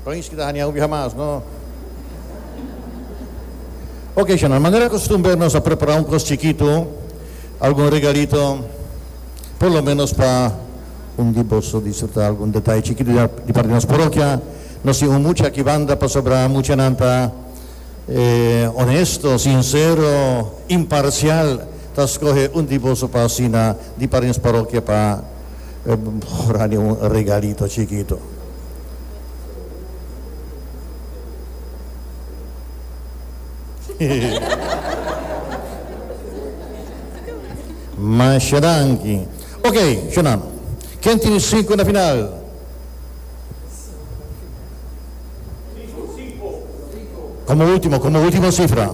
País ki ta hania hopi hamas no. Oke Shana, manera kostumber nos a prepara un kos chikitu, algun regalito, por lo menos pa un di boso disfruta algun detaye chikitu di parti di nos parokia. Nos tin un mucha aki banda pasobra muchanan ta onesto, sinsero, imparsial, ta skohe un di boso pa asina di parti di nos parokia pa. e hora di un regalito chikito. Masha danki. Ok, shunam. Ken tin sinku na final? Komo ultimo, komo ultimo sifra.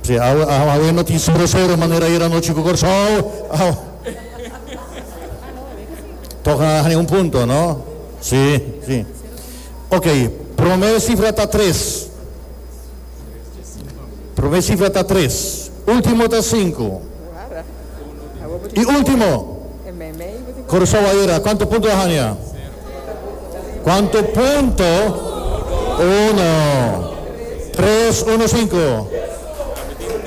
Sí, awe, awe, awe no tin suro suro manera ayer anoche cu Corsao. Aw. Toca hay un punto, ¿no? Sí, sí. Ok, primer cifra está tres. Prome sifra ta tres. Ultimo ta sinku. I ultimo. Curacao ayera. Cuanto punto a hanja? Cuanto punto? Uno. Tres, uno, sinku.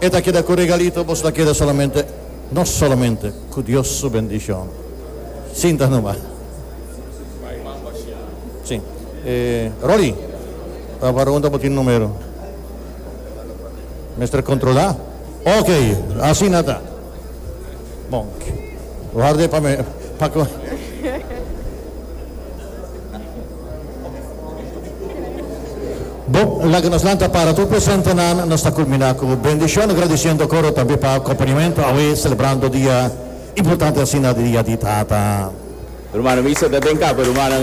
E ta keda ku regalito, boso ta keda solamente, no solamente, ku Dios su bendishon. Sinta numa. Si. E, Rolly, ta parunta bo tin numero. Mester kontrolá. Ok, asina ta. Bon, warda e pa mi, pa ku. Bo, laga nos lanta para tur presentenan. Nos ta kulminá ku bendishon agradisiendo koro tambe pa akompañamentu awe selebrando dia importante asina di Dia di Tata. Rumannan mi seta den kaba rumannan.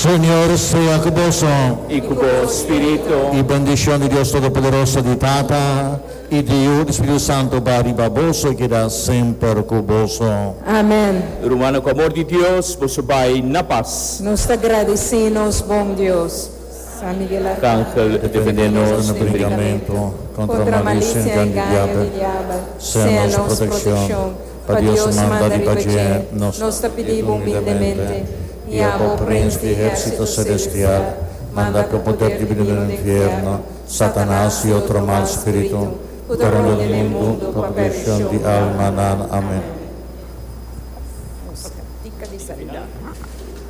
Señor sea ku boso. I ku bo spiritu. I bendishon di Dios Todopoderoso, di Tata. I diu di Spiritu Santu bai riba boso i keda semper ku boso. Amen. Rumannan, ku amor di Dios, boso bai na pas. Nos ta gradisí nos bon Dios, San Miguel Arcángel, e defendé nos den e brinkamentu kontra malicia i engaño di diabel. Sea nos protekshon, pa Dios manda riba dje, nos ta pidí bo humildemente, i abo, Prins di Ehérsito Selestial, manda ku poder dibinu den e nfierno, Satanas i otro mal spiritu ku ta ronda di mundu pa pershon di almanan. Amen.